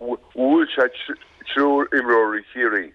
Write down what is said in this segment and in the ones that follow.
Bhuail sé triúr imreoirí Chiarraí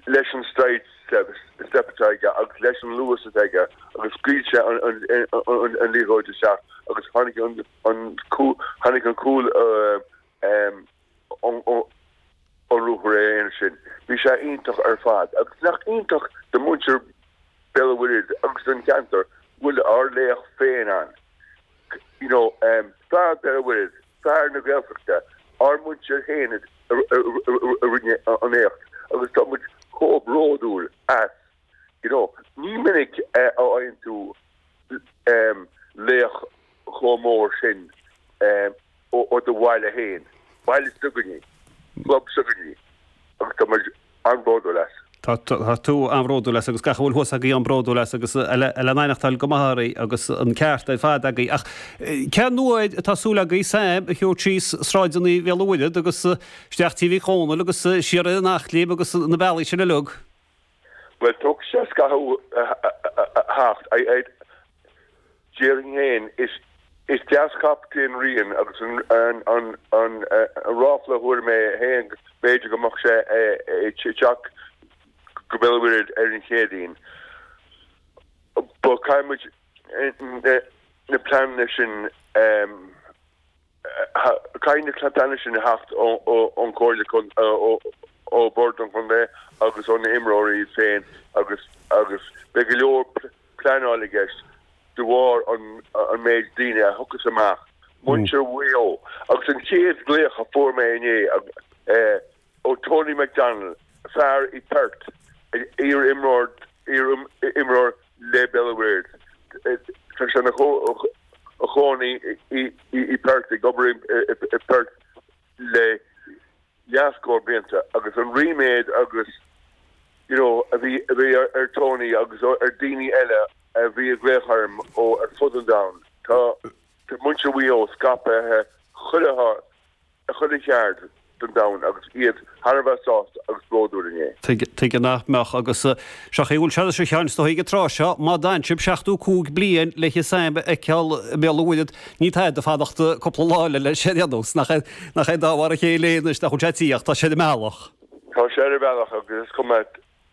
leis an sidestep atá aige agus leis an luas atá aige agus scaoil sé an liathróid isteach agus tháinig an cúl ón ruathar aonair sin. Bhí sé iontach ar fad agus nach iontach do mhuintir Bhéal an Mhuirthead agus don cheantar go bhfuil ár laoch féin ann, you know, fear Bhéal an Mhuirthead. Fear na Gaeltachta, ár muintir féin a rinne an éacht agus tá muid chomh bródúil as. You know, ní minic a fhaigheann tú laoch chomh mór sin ó do bhaile féin, baile s'againne, club s'againne agus tá muid an-bhródúil as. Tá tú an-bhródúil as agus gach a bhfuil thuas agaibh an-bhródúil as agus é le n-aithneachtáil go maith oraibh agus an ceart ar fad agaibh. Ach cén uair atá súil agaibh Sam a thabhairt síos sráideannaí Bhéal an Mhuirthead agus isteach tigh Mhic Dhónaill agus siar in Eachléim agus na bealaí sin uilig? Bhuel, tógfaidh sé scaitheamh a theacht. Déarfainn féin, is leaschaptaen é Ryan agus an ráfla a fuair mé féin go mb'fhéidir go mbeadh sé ag teacht go Béal an Mhuirthead ar an Chéadaoin. Ba, caithfidh muid na pleananna sin. Caithfidh na ceadanna sin a theacht ón Chomhairle, ó Bhord an Chontae agus ó na himreoirí iad féin agus agus beidh go leor pleanáil i gceist de bharr an méid daoine a thiocfas amach, muintir Mhaigh Eo agus an chéad ghlaoch a fuair mé inné, ó Tony McDonnell, fear i Perth, iar-imreoir le Béal an Mhuirthead. Tá sé ina chónaí i Perth, ag obair i Perth le leathscór blianta agus an ríméad agus you know a bhí ar Tony agus ar daoine eile a bhí ag glaoch orm ó ar fud an domhain. Tá muintir Mhaigh Eo scaipthe chuile áit. ar chuile cheard den domhan agus iad thar a bheith sásta agus bródúil inné. Tuige nach mbeadh agus seachain go bhfuil sé anois a Sheáin is dóigh ag an tráth seo má d'fhan sibh seachtó cúig bliain le haghaidh Sam a fheiceáil i mBéal an Mhuirthead ní tada é fanacht cúpla lá eile leis sin a dhéanamh. Nach é dá mhar a chéile é anois nach bhfuil sé ag tíocht, tá sé ar a bhealach. Tá sé ar a bhealach agus is cuma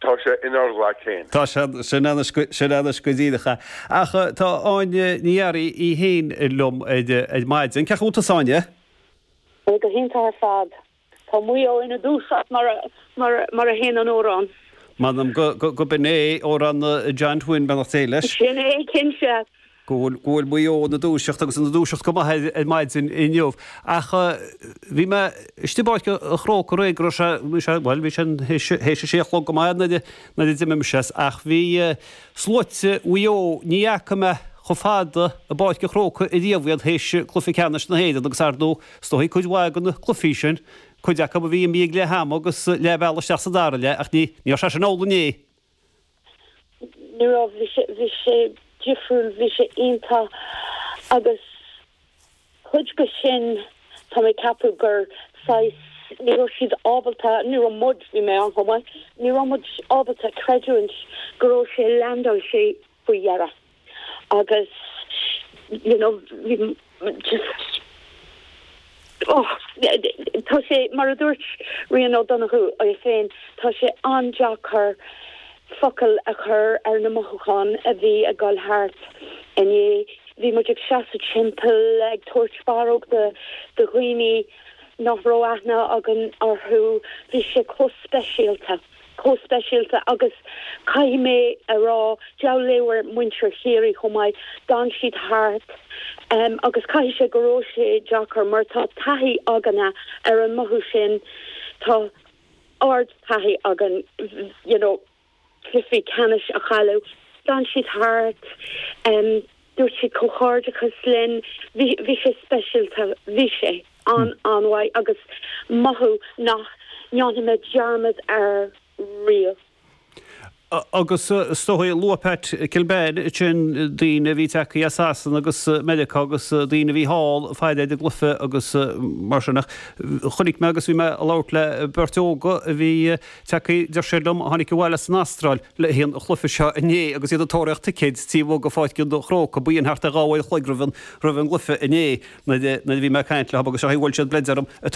Tá sé inár nglaic féin. Tá sé sin ansin anois go deimhin ach a. Ach tá Áine Ní Fhearraigh í féin liom ar ar maidin. Cén chaoi a bhfuil tusa Áine? Ó go hiontach ar fad. Tá Maigh Eo ina dúiseacht mar a mar a mar a théann an t-amhrán. M'anam go go go mb'in é amhrán John Twin beannacht Dé leis. Sin é cinnte. go bhfuil Maigh Eo ina dúiseacht agus ina dúiseacht go maith ar maidin inniu ach bhí mé istigh i bPáirc an Chrócaigh aréir go raibh sé, bhí sé, bhuel, bhí sé, théis a sé a chlog go maith nuair a d'imigh mise as ach bhí sluaite Mhaigh Eo, ní fhaca mé chomh fada i bPáirc an Chrócaigh ariamh iad théis Cluiche Ceannais na hÉireann agus ar ndóigh, is dóigh cuid mhaith de na cluichí sin, cuid acu a bhí imithe ag leath ama agus leath bealaigh isteach sa dara leath ach ní raibh sé sin amhlaidh inné. Ní raibh, bhí sé, bhí sé difriúil, bhí sé iontach agus cuid de sin tá mé ag ceapadh gur saghas, ní raibh siad ábalta, ní raibh muid, bhí mé ann chomh maith, ní raibh muid ábalta creidiúint go raibh sé landáilte. faoi dheireadh agus you know bhí just oh tá sé mar a dúirt Ryan O'Donoghue é féin tá sé an-deacair focail a chur ar na mothúcháin a bhí ag dul thart inné. Bhí muid ag seasamh timpeall ag tabhairt barróg do do dhaoine nach raibh aithne againn orthu. Bhí sé chomh speisialta. chomh speisialta agus caithfidh mé a rá deabhal leabhar muintir Chiarraí chomh maith, d'fhan siad thart agus caithfidh sé go raibh sé deacair mar tá taithí againne ar an mothú sin, tá ard-taithí againn you know cluichí ceannais a chailleadh, d'fhan siad thart. Dúirt siad comhghairdeachas linn, bhí sé speisialta, bhí sé an-an-mhaith agus mothú nach ndéanfaidh mé dearmad air riamh. Agus is dóigh, luaigh Pat Kilbane ansin daoine a bhí ag teacht as Sasana agus Meiriceá agus daoine a bhí thall le haghaidh an chluife agus mar sin ach chonaic mé agus bhí mé ag labhairt le beirt óga a bhí Tagtha, deir siad liom, a tháinig abhaile as an Astráil le haghaidh an chluife seo inné agus iad ag tóraíocht ticéid taobh amuigh de Pháirc an Chrócaigh, b'in thart ar dhá uair a chloig roimh an gcluife inné nuair a bhí mé ag caint leo agus sé an chaoi ar bhuail siad bleid orm ag